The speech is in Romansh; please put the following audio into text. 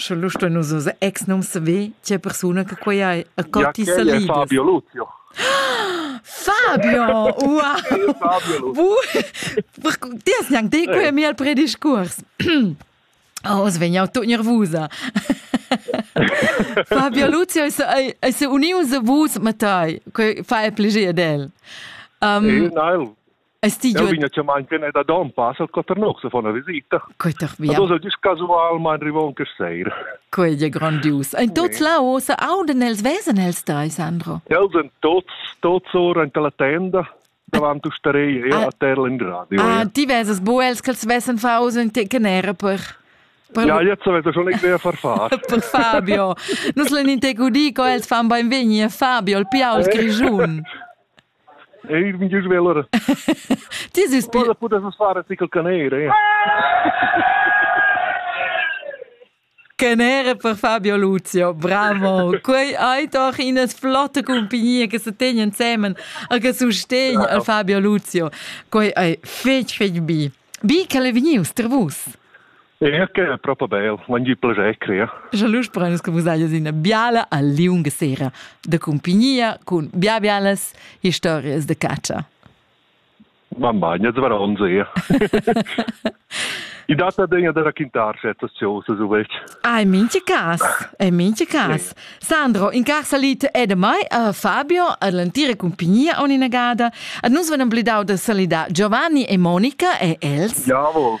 Sche lu stein nus oz ex num saver tgei persuna che quei ei. E co ti sa libers? Fabio Luzio. Fabio! Ua! Ti hast gnanc dei quei mi al prediscurs. Oh, oz vegn jau tut nervusa. Fabio Luzio è unius a vus, Mattei, fa e plegir d'el. Um, nein, Es ti Jau vegna chiamà in quena da Dompas al Coternox a far una visita. Ma dos dis casualmain rivon quest seir. Quei è grandius. Ein tots là ossa aunden els vesen els drei, Sandro? Els en tots, tots ora in la tenda davant usteria, ja, ah. a terra in radio. Ah, ja. ti veses bu els che els vessen far uso in te che era per... Per... Ja, jetzt avete schon idea per far. per Fabio. Nus len in te dico, els fan ben venir Fabio, il piau, il grigiun. Ich bin Gischwäller. Dies ist Pudel pudess fare sickle canere. eh? Canere per Fabio Luzio, bravo. Quei hai doch in flotte compagnia che se tegn insieme a che sustegn al Fabio Luzio. Quei ei fetg fetg bi. Bi che le vegnius tra vus. Erke, propo bel, l'han gi plager crer. Scha lu sprein che vus hajas ina biala al liung sera da cumpignia cun bia bialas historias de caccia. Mamma, gnez var on sehe. I dat adegna da raquintar certas cosas uvet. Ah, in minti cas, in minti cas. Sandro, in car salit è da mai a Fabio ad l'antira compagnia on inagada. Ad nus van amblidau da salidar Giovanni e Monica e els. Javo.